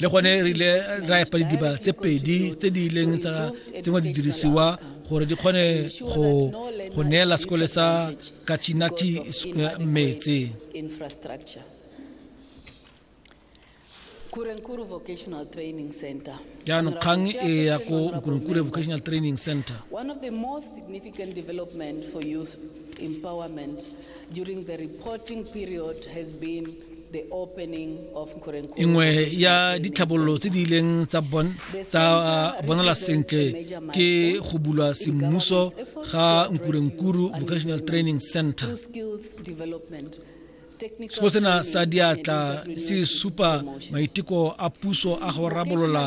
le gone re ile ra epa didiba tse pedi tse di ileng tsa tsengwa didirisiwa gore di kgone go go neela sekole sa kachinati eh, metse jaanong kgang e ya ko nkurenkure vocational training center One of the most significant development for youth empowerment during the reporting period has been nngwe ya ditlhabololo tse di ileng tsa uh, bonala sentle ke go bulwa semmuso ga nkurenkuru vocational training center seo sena sa diatla se supa maiteko a puso a go rabolola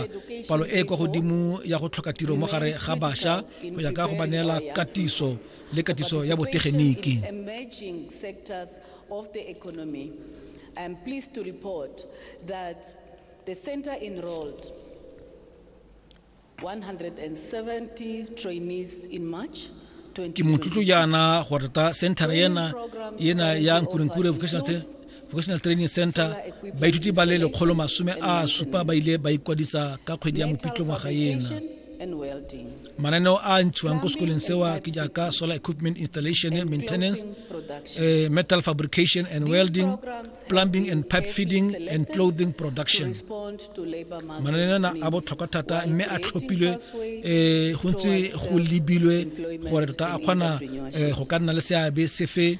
palo e e kwa godimo ya go tlhoka tiro mo gare ga bašwa go ya ka go ba neela katiso le katiso ya botegeniki of the economy, I am pleased to report that the center enrolled 170 trainees in March ke motlotlo jaana go reta centre ena ena ya nkurenkure vocational training center baithuti ba le lekgolo masome a supa ba ile ba ikwadisa ka kgwedi ya mopitlo ngwaga ena mananeo a a ntshiwang ko sekoleng sewa ke jaaka solar equipment installation maintenance uh, metal fabrication and welding plumbing and pipe feeding and clothing production mananeo ana a botlhokwa thata mme a tlhophilwe um go ntse go lebilwe gore tota a kgona eh, go ka nna le seabe sefe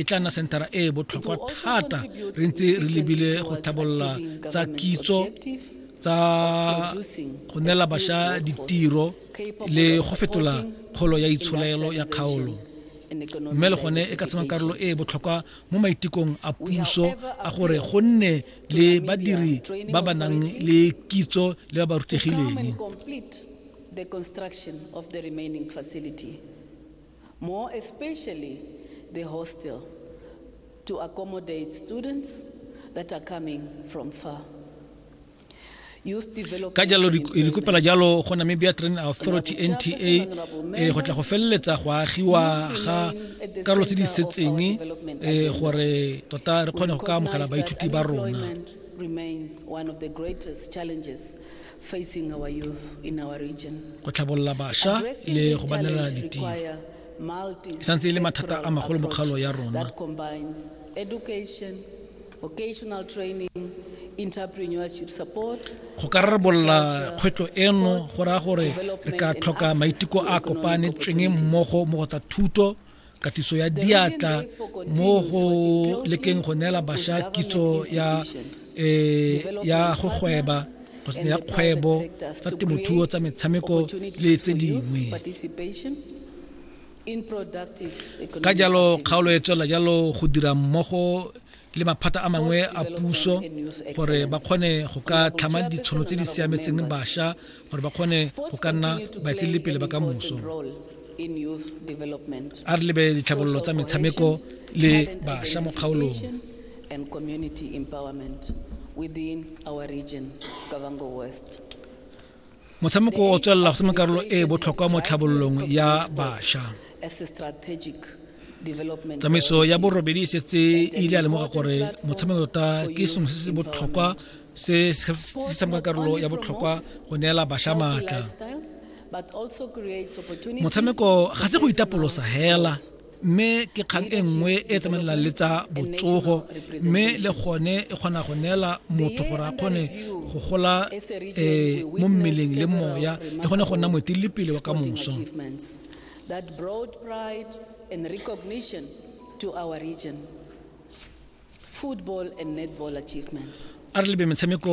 e tla nna senthara e e botlhokwa thata re ntse re lebile go tlhabolola tsa kitso tsa go neela bašwa ditiro le go fetola kgolo ya itsholelo ya kgaolo mme le gone e ka tsema karolo e e botlhokwa mo maitekong a puso a gore go nne le badiri ba ba nang le kitso le ba ba rutegileng more especially the hostel to accommodate students that are coming from far. ka jalo re kopela jalo go namibia training authority nta eh, go tla go feleletsa go agiwa ga karolo tse di setseng eh, gore tota re kgone go ka amogela baithuti ba rona Facing our youth in our region. Go tlhabolola basha le go ba neela ditiro e santse e le mathata a magolo mo kgaolo ya rona. Go ka rarabolola kgwetlho eno go raya gore re ka tlhoka maiteko a kopanetsweng mmogo mo go tsa thuto katiso ya diatla mo go lekeng go neela basha kitso ya e ya go gweba ya kgwebo tsa temothuo tsa metshameko le tse dingwe ka jalo kgaolo e tswela jalo go dira mmogo le maphata a mangwe a puso gore ba kgone go ka tlhama ditshono tse di siametseng basha gore ba kgone go ka nna baetelelipele ba ka moso a re lebe ditlhabololo tsa metshameko le bašwa mo kgaolong and community empowerment within our region, Kavango West. motshameko o tswelela go tshameka karolo e e botlhokwa mo tlhabololong ya bašwa tsamaiso ya borobedi e setse e ile ya lemoga gore motshameko tota ke sengwe se se botlhokwa se se tshameka karolo ya botlhokwa go neela basha maatla motshameko ga se go itapolosa hela mme ke kgang e nngwe e tsamaelang le tsa botsogo mme le gone e kgona go neela motho gore a kgone go gola um mo mmeleng le moya le gone go nna moeteledipele wa ka moso that brought pride and recognition to our region. football and netball achievements. A re lebe metshameko